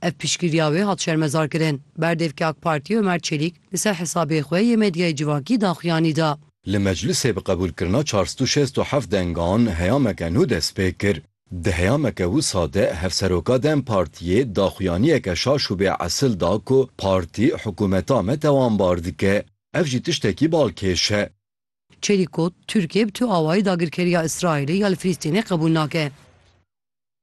Ev piştgiriya wê hat şermezarkirin. Berdevkê AK Partiyê Omer Çelîk li ser hesabê xwe yê medyayê civakî daxuyanî da. Li meclisê bi qebûlkirina çar sed û şêst û heft dengan heyameke nû destpê kir. Di heyameke wisa de Hevseroka dem Partiyê daxuyaniyeke şaş û bê esil da ku Partî hikûmeta me tewambar dike. Ev jî tiştekî balkêş e. Çelîk got, Tirkiye bi tu awayî dagirkeriya Îsraîlê ya li Filîstînê qebûl nake.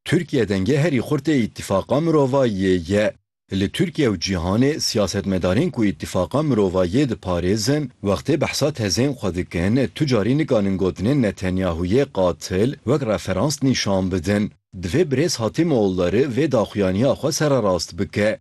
Tirkiye dengê herî xurt ê Îtîfaqa Mirovayîyê ye. Li Tirkiye û cîhanê siyasetmedarên ku Îtîfaqa Mirovayîyê diparêzin wextê behsa tezên xwe dikin tu carî nikanin gotinên Netanyahûyê qatil wek referans nîşan bidin. Divê Birêz Hatim Oğulları vê daxuyaniya xwe sererast bike.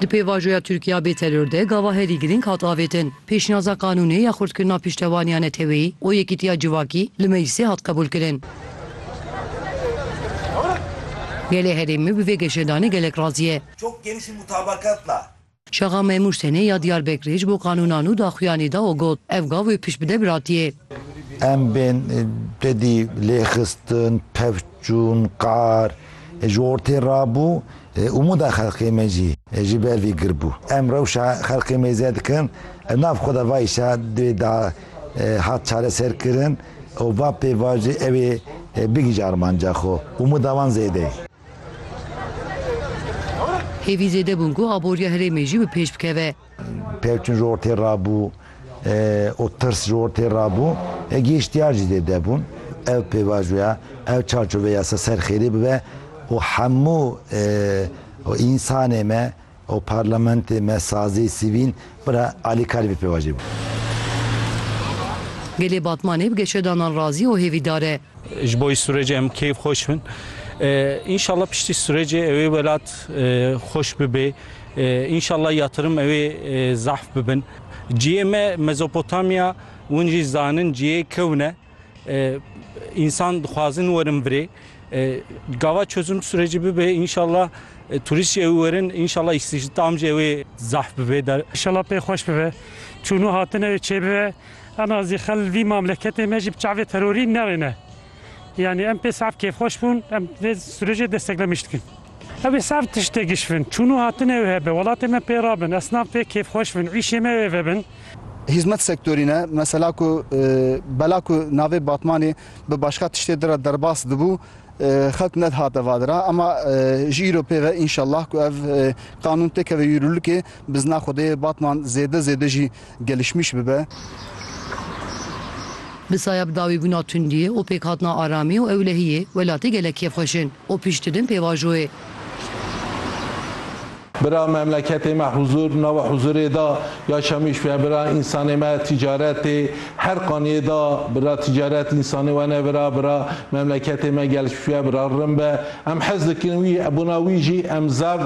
Di pêvajoya Tirkiya bê teror de gava herî girîng hat avêtin. Pêşniyaza qanûnê ya xurtkirina piştevaniya neteweyî û yekîtiya civakî li meclisê hat qebûlkirin. Gelê herêmê bi vê geşedanê gelek razî ye. Çok geniş bir mutabakat la. Şaxa Memûr Senê ya Diyarbekirê ji bo qanûnan û daxuyanê da û got, Ev gav wê pişt bide biratiyê. Em bên tedî lêxistin, pevçûn, qar ji ortê rabû, umûda xelkê me jî ji ber vî gir bû. Em rewşa xelkê mêze dikin, li nav xwe de va îşa divê da hat çareserkirin û va pêvajo ew ê bigihîje armanca xwe. Umûda wan zêde ye. Hêvî zêde bûn ku aboriya herêmê jî bi pêş bikeve. Pevçûn ji ortê ra bû û tirs ji ortê ra bû. Gêştiyar jî zêde bûn. Ev pêvajoya, ev çarçoveya ser xêrê bibe û hemû însanê me, Ew parlamentê me sazê sivîl bira Alî Kalî bi pêvajoyê bû. Gelê Batmanê bi geşedanan razî û hêvîdar e. Ji bo sûrecê em keyf xweş bin. Înşallah piştî sûrecê ewê welat xweş bibê. Înşallah yatirim ewê zahf bibin. Ciyê me Mezopotamya, win jî zanin ciyê kewne. İnsan dixwazin werin birê. Gava çözüm süreci bibe inşallah turist jê ew werin inşallah istihdam jê wê zahf bibe der. İnşallah pê xweş bibe. Çûnû hatine wê çêbibe. Em azî xel vî mamleketê me jî bi çavê terorî newêne. Yani em pê saf kêfxweş bûn, em vê sürecê desteklemiş dikin. Ew ê serd tiştê gişvin. Çûn û hatin ew hebe. Welatê me pê ra bin. Esnaf pê kêfxweş bin. Îşê me wê vebin. Hîzmet sektorî ne, mesela ku bela ku navê Batmanê bi başka tiştê di re derbas dibû, xelk nedihate va di re. Ema ji îro pê ve înşellah ku ev qanûn têkeve yûrûlikê, bizna Xwedê Batman zêde zêde jî, gelişmiş bibe. Bi saya bi dawî bûna tundiyê û pêkhatina aramî û ewlehiyê, welatê gelek kêfxweş in û pişt didin pêvajoyê. Bira memleketê me huzur nawe huzurê da ya şemîş ve bira însanê me tîcaretê her qaniyê da bira tîcaret însanê we ne vira bira memleketê me gelişmiş ve bira rin be em hez dikin wî ebûna wî jî em zav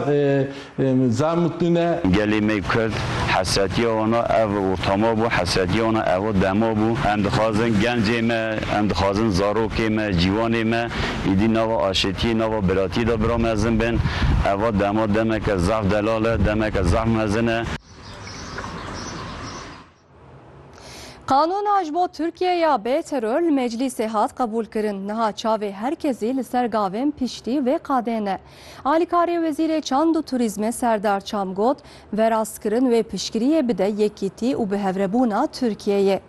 Zaf mutlu ne. Gelê me Kurd hesretiya wana ev û tama bû, hesretiya wana evo dema bû. Em dixwazin gencê me, em dixwazin zarokê me, cîwanê me îdî nava aşêtiyê, nava biratiyê de bira mezin bên. Eva dema demeke zaf delal e, demeke zaf mezin e. Qanûna ji bo Tirkiye ya bê teror li meclîsê hat qebûlkirin. Niha çavê her kesî li ser gavên piştî vê qadê ne. Alîkarê Wezîrê Çand û Turîzmê Serdar Çam got, Verastkirin wê piştgiriyê bide yekîtî û bihevrebûna Tirkiyeyê.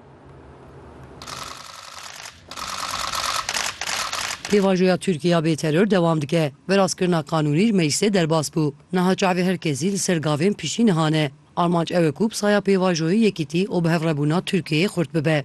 Pêvajoya Tirkiye ya bê teror dewam dike. Verastkirina qanûnî li meclîsê derbas bû. Niha çavê her kesî li ser gavên piştî niha ne. Armanc ew e ku bi saya pêvajoyê yekîtî û bi hevrebûna Tirkiyeyê xurt bibe.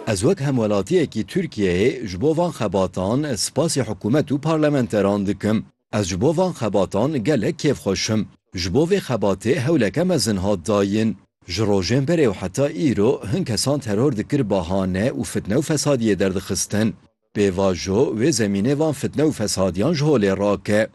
Ez wek hemwelatiyekî Tirkiyeyê ji bo van xebatan spasî hikûmet û parlamenteran dikim. Ez ji bo van xebatan gelek kêfxweş im. Ji bo vê xebatê hewleke mezin hat dayin. Ji rojên berê û heta îro hin kesan teror dikir bahane û fitne û fesadiyê derdixistin. Pêvajo wê zemînê van fitne û fesadiyan ji holê rake.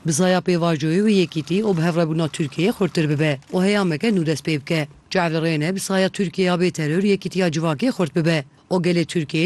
Bizaya pêvajoyê wê yekîtî û bihevrebûna Tirkiyeyê xurttir bibe û heyameke nû dest pê bike. Cevli rê ne bizaya Tirkiyeya bêteror yekîtiya civakê xurt bibe û gelê Tirkiyeyê